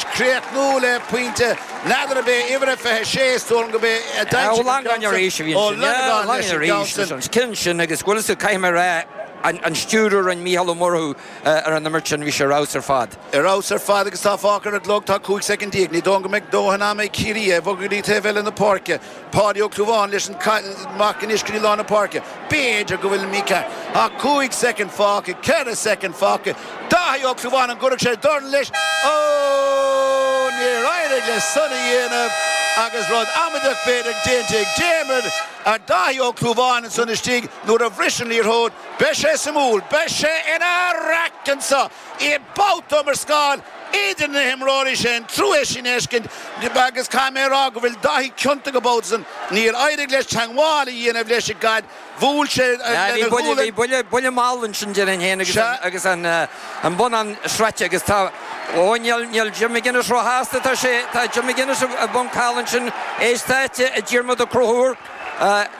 chríochnú le pointe. N'fheadar ab é uimhir a 26, is dóigh liom gurb é, a d'aimsigh an ceann san ó Lonergan leis an gceann sin. Chinn sin agus go bhfuil fhios agat, caithfidh mé a rá, an stiúradh a rinne Mícheál Ó Murchú ar an imirt sin, bhí sé ar fheabhas ar fad. Ar fheabhas ar fad agus tá fágtha ar an gclog, tá 15 soicind. Ní dóigh liom go mbeidh dóthain ama ag Ciarraí é a bhogadh go dtí taobh eile na páirce. Páidí Ó Clúmháin leis amach anois go dtí lár na páirce. B'fhéidir go bhfuil Mika ach cúig soicind fágtha, ceithre soicind fágtha. Daithí Ó Clúmháin an gcuirfeadh sé dorn leis. Ó! Níor éirigh leis san a dhéanamh agus rud amaideach b'fhéidir déanta ag Diarmuid ag Daithí Ó Clúmháin ansan istigh nuair a bhris an liathróid. Beidh sé suimiúil. Beidh sé ina raic anseo. I mbabhta iomrascáil idir na himreoirí sin, trua é sin a fheiscint agus caithfidh mé a rá go bhfuil Daithí ciontach an babhta san. Níor éirigh leis teangmháil a dhéanamh leis an gcaid, bhuail sé lena ghualainn. Bhí buille mall ansin déarfainn féin agus an bonnán sroichte agus tá, ó níl Jim McGuinness róshásta, tá sé, tá Jim McGuinness i bponc thall ansin, is tá Diarmuid Ó Conchúir,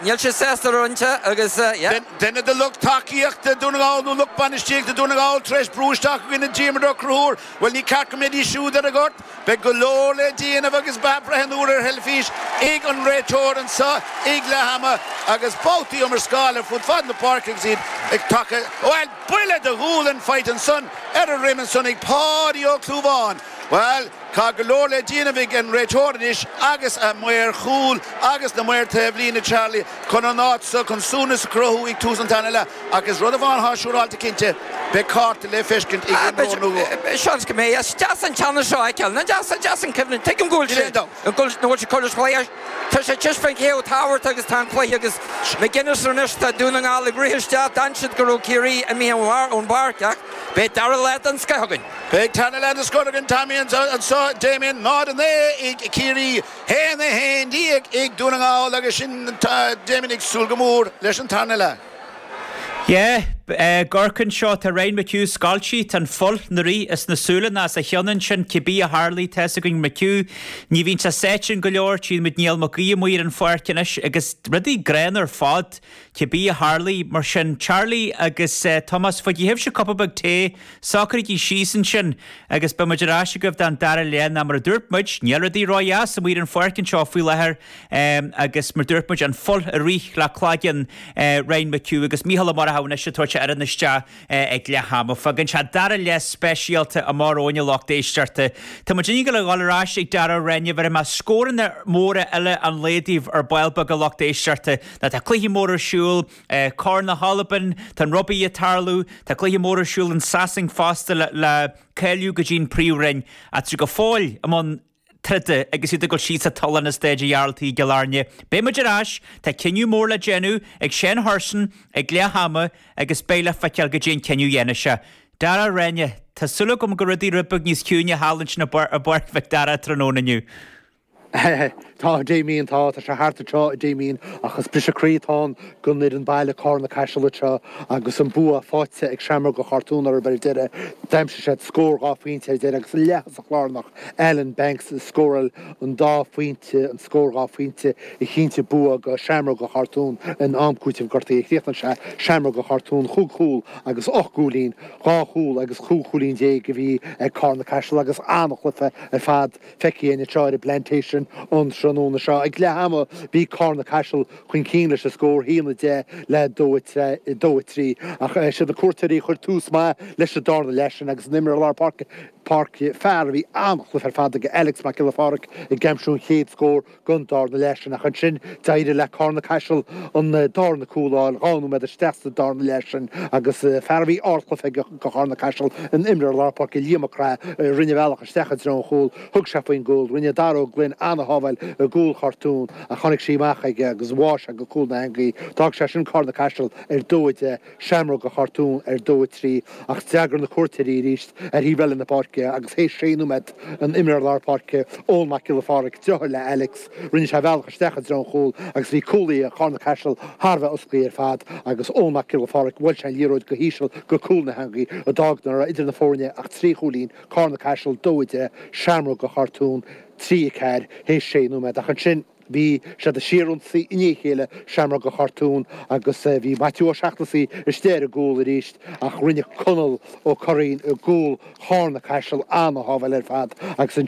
níl sé sásta a roinnt agus yeah. Duine de lucht tacaíochta Dún na nGall nó lucht bainistíochta Dún na nGall tar éis brú isteach i gcoinne Diarmuid Ó Conchúir, bhuel ní ceart go mbeidís siúd ar an ngort. Beidh go leor le déanamh agus beidh breithniú ar theilifís ag an réiteoir anseo ag leath ama agus babhtaí iomrascála ar fud fad na páirce agus iad ag tacú, bhuel buille de ghualainn faighte ansan ar a dhroim ansan ag Páidí Ó Clúmháin. Bhuel, tá go leor le déanamh ag an réiteoir anois agus a maoir chúil agus na maoir taobh líne, Charlie, chun an áit seo chun suaimhneas a chruthú ag tús an tarna leath. Ach is rud amháin athá siúráilte cinnte, beidh cárta le feiscint ag imreoir nó dhó. Seans go mbeidh. Is deas an teannas seo a fheiceáil. Nó deas, is deas an cuimhne. Tuigim go bhfuil sé, go bhfuil sé curtha sa chlaí. Tá sé tis faoin chéad tabhartha agus tá an cluiche agus McGuinness anois, tá Dún na nGall ag rith isteach, d'fhan siad go raibh Ciarraí imithe ón bpáirc ach beidh dara leath den scoith againn. Beidh tarna leath den scoth againn Tommy anseo, Damien 0, 9 ag Ciarraí, 1, 11 ag Dún na nGall agus sinn Damien ag súil go mór leis an tarna leath. Yeah, ag amharc anseo, tá Ryan McHugh scoilte, tá an fhuil ina rith is na súileanna as a cheann ansin, cibé a tharlaigh tá 'fhios againn McHugh, ní bhíonn sé sáite in go leor, tchíonn muid Neil McGee amuigh ar an pháirc anois agus rudaí gránna ar fad. Cibé a tharlaigh, mar sin. Charlie agus Tomás, faigí sibhse cupa beag tae, socraígí síos ansin agus beidh muid ar ais agaibh don dara leath. Ná mar a dúirt muid, níl rudaí ró-dheas amuigh ar an pháirc anseo faoi láthair agus mar dúirt muid, an fhuil ag rith le cloigeann Ryan McHugh agus Mícheál Ó Murchú anois ag tabhairt a fhoireann isteach. ag leath ama. Fágann sé dara leath speisialta amach romhainn a lucht éisteachta. Tá muid inniu le dhul ar ais ag Darragh Reyne. Bhéarfaidh mé scóranna móra eile an lae daoibh ar ball beag a lucht éisteachta. Ná tá cluichí móra ar siúl. Corn na hAlban, tá an rugbaí ag tarlú. Tá cluiche mór ar siúl in Sasain fosta le cáiliú go dtí an príomhroinn. Ach go fóill i mbun na. troda agus iad ag dul síos sa tollán i Stáid a' Ghearaltaigh i gCill Airne. Beidh muid ar ais, tá cinneadh mór le déanamh ag Seán Hurson ag leath ama agus beidh le feiceáil goidé an cinneadh a dhéanfas sé. Dara Rane Tá súil agam go bhfuil rudaí rud beag níos ciúine thall ansin i bPáirc Mhic Dara tráthnóna inniu. Tá, a Damien, tá. Tá sé thart anseo, a Damien, ach is briseadh croí atá ann don fhoireann baile, Carna Caiseal anseo, agus an bua faighte ag Seamróga Chartúin orthu ar deireadh. D'aimsigh siad scór dhá phointe ar deireadh agus an leath-thosach láir. Alan Banks a scórail an dá phointe, an scór dhá phointe a chinntigh bua go Seamróga Chartún in am cúitimh gortaithe. Críochnaíonn sé Seamróga Chartún chúig chúl agus ocht gcúilín, dhá chúl agus cúig chúilín déag a bhí ag Carna-Caiseal agus an-chluiche ar fad feicthe againn anseo ar an bPlantation an tráthnóna seo. Ag leath ama bhí Carna-Caiseal chun cinn leis an scór haon a deich le dó a trí ach siad na cuairteoirí a chuir tús maith leis an darna leath sin agus an imreoir lár páirce, Páirc, Fear a bhí an-chluiche ar fad aige Alex Mac Giolla Pháraic ag aimsiú an chéad scór den darna leath sin ach ansin d'éirigh le Carna Caiseal an darna cúl a fháil dhá nóiméad isteach sa darna leath sin agus fear a bhí ardchluiche aige go Charna Caiseal an imreoir lár páirce Liam Mac Craith a rinne a bhealach isteach i dtreo an chúl thug sé faoin gcúl rinne Dara Ó Gloinn an-shábháil i gcúl Chartún ach tháinig sí amach aige agus bháigh sé go cúl na heangaí d'fhág sé sin Carna Caiseal ar dó a deich Seamróga Chartún ar dó a trí ach d'fhreagair na cuairteoirí arís ar thaobh eile na páirce é agus théis sé nóiméad an imreoir lár páirce Eoin Mac Giolla Phádraig driotháir le Alex rinne sé a bhealach isteach i dtreo an chúil agus bhí cúlaithe Carna-Caiseal thar a bheith osclaithe ar fad agus Eoin Mac Giolla Phádraig bhuail sé an liathróid go híseal go cúl na heangaí a d'fhág nach raibh idir na fóirne ach trí chúilín, Carna-Caiseal 2-10 Seamróga Chartún 3-4 théis sé nóiméad ach ansin. Bhí siad ag síorionsaí i ndiaidh a chéile Seamróga Chartún agus bhí Maitiú Ó Seachnasaigh istigh ar an gcúl arís ach rinne Conall Ó Curraoin i gcúl Charna Caiseal an-shábháil ar fad agus an